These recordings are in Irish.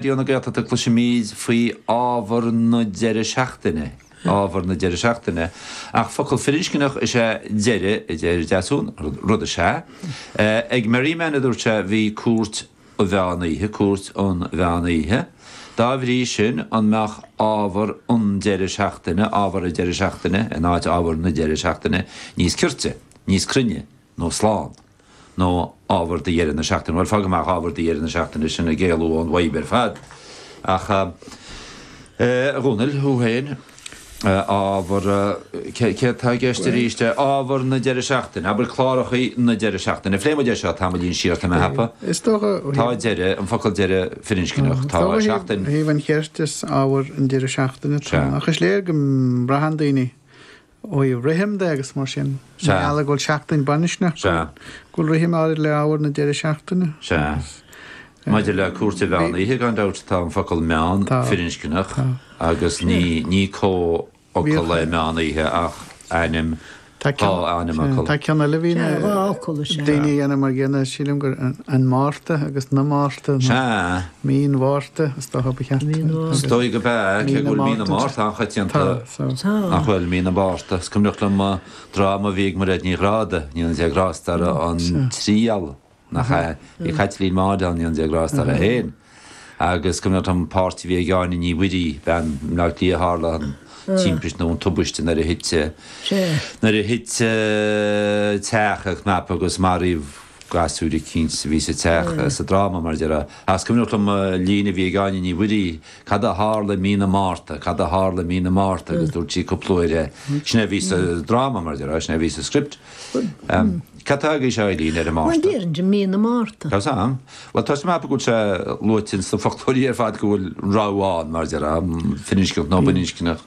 Bíonn na Gaeltachta cloisimid faoi ábhar na deireadh seachtaine, ábhar na deireadh seachtaine, ach focal firinscneach is ea deireadh, a deir Deasún, rud is ea. Ag Merriman, a dúirt sé, bhí cúirt an mheán oíche, cúirt an mheán oíche. Dá bhrí sin, an mbeadh ábhar an deireadh seachtaine, ábhar an deireadh seachtaine, in áit ábhar na deireadh seachtaine, níos cirte, níos cruinne, nó slán. nó ábhar do dheireadh na seachtaine. Bhuel, fág amach ábhar do dheireadh na seachtaine, sin é ag éalú ón bhfadhb ar fad. Ach, a Dhomhnaill, thú féin, ábhar, céard tá i gceist arís? Ábhar na deireadh seachtaine, abair cláracha na deireadh seachtaine. An bpléimid é seo tamaillín siar, tá mé thapa? Is dócha. Tá deireadh, an focal deireadh firinscneach, tá seachtain. Ó thaobh an chirt is ábhar an deireadh seachtaine, tá. Ach is léir go mbraitheann daoine ó i rithim de agus mar sin Sea. mar gheall go bhfuil seachtain baininscneach go Sea. bhfuil go bhfuil rithim áirid le hábhar na deireadh seachtaine. Sea. Maidir le cúirt an mheán oíche gan dabht tá an focal meán Tá. firinscneach Tá. agus ní ní comhfhocal Bhíodh- é meán oíche ach ainm Tá Tá ceann- ainm Sea, fhocal. tá ceann eile a bhíonn Sea, dhá fhocal is ea. daoine a dhéanamh mar gcéanna sílim gur an an Márta agus na Márta nó Sea. Mí an Mhárta is dócha ba cheart Mí an Mhárta. Is dóigh gurb ea cé go bhfuil Mí na Márta an-choitianta. Tá. Nach bhfuil? Mí na Márta. Is cuimhneach liom dráma a bhí ag Mairéad Ní Ghráda, Níolann Dé Grásta ar An Triail, nach ea? Bhí Caitlín Maude ann, Níolann Dé Grásta ar Féin. Agus is cuimhneach liom an páirt a bhí ag Áine Ní Mhuirí, bean i mBleá Cliath a tharla an timpiste nó an tubaiste nuair a thit, nuair a thit teach ina chnap agus maraíodh, gasúir eicínt a bhí sa teach, sa dráma, mar a déarfá. Ach is cuimhneach liom líne a bhí ag Áine Ní Mhuirí, Cad a tharla i mí na Márta, cad a tharla i mí na Márta, agus dúirt sí cúpla uair é. Sin é a bhí sa dráma, mar a déarfá, sin é a bhí sa script. Cad tá agaibhse, a Eilín, ar an Márta? Bhuel, deirimidne mí na Márta. Tá sa, bhuel, táim ag ceapadh go bhfuil sé luaite in sna foclóirí ar fad go bhfuil an rogha ann, mar a déarfá, firinscneach nó baininscneach.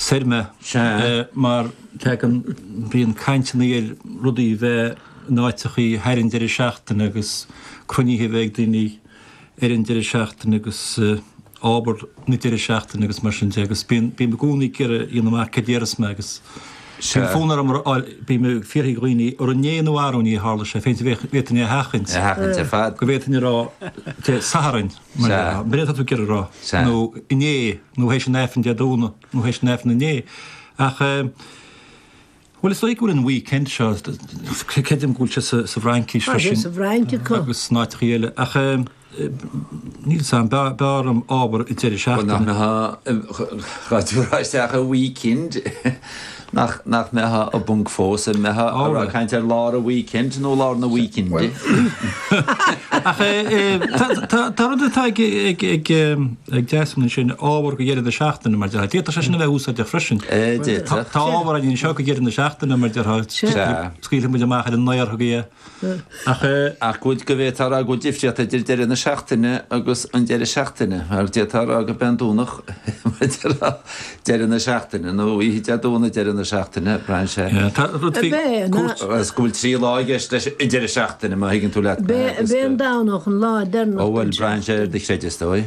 Saor mé. Sea, mar tagann, bíonn caint i nGaeilge rudaí a bheith in áiteachaí thar an deireadh seachtaine agus cruinnithe a bheith ag daoine thar an deireadh seachtaine agus obair na deireadh seachtaine agus mar sin de agus bíonn, bím i gcónaí ag iarraidh a dhéanamh amach cad déarfas mé agus bíonn fonn orm a fháil, bím ag fiafraigh dhaoine ar inné nó arú inné a tharla sé féin, bhí, bhféadfainn é a sheachaint. A sheachaint ar fad. Go bhféadfainn a rá, Dé Sathairn, mar, b'fhéidir, atá tú ag iarraidh a rá, nó inné, nó théis an aifrinn Dé Domhnaigh, nó théis an aifrinn inné. Ach, bhuel, is dóigh go bhfuil an weekend seo, creidim go bhfuil sé sa bhFraincís freisin. Tá sé sa bhFrainc acu. Agus in áiteachaí eile. Ach, níl a fhios agam, beidh orm ábhar deireadh seachtaine. Bhuel, nach mbeadh Raidió Raisteach i weekend. Nach mbeadh muid i bponc fós ag caint ar lár an weekend nó lár na weekend? Ach tá rud atá ag Desmond ansin, ábhar go deireadh na seachtaine mar déarfá. D'fhéadfadh sé sin a bheith úsáideach freisin. D'fhéadfadh. Tá ábhar againn anseo go deireadh na seachtaine mar déarfá. Scaoilfidh muid amach ar an aer chugaibh é. ach go bhfuil go bhféadfá a rá go bhfuil difríocht idir deireadh na seachtaine agus an deireadh seachtaine, mar d'fhéadfá a rá gurb é an Domhnach deireadh na seachtaine, nó oíche Dé Domhnaigh deireadh na seachtaine, braitheann sé. Tá rud faoi cúirt. Is go bhfuil trí lá i gceist leis an deireadh seachtaine, má thuigeann tú leat mé. Beidh an Domhnach an lá deireanach den seachtain. Ó bhuel, braitheann sé ar do chreideamh, is dóigh.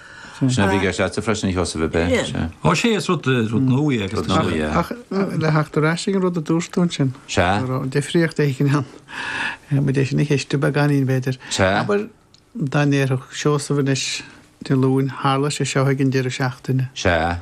Sin a bhí i gceist agatsa freisin, a Sheosaimh, ab ea, sea. Ó sea, is rud nua é agus tá sé. Ach le theacht ar ais ag an rud a dúirt tú ansin, go raibh an difríocht eicínt ann. Muid é sin a cheistiú beagáinín, b'fhéidir. Abair, dá ndéarfadh Seosamh anois, Dé Luain, tharla sé seo ag an deireadh seachtaine. Sea.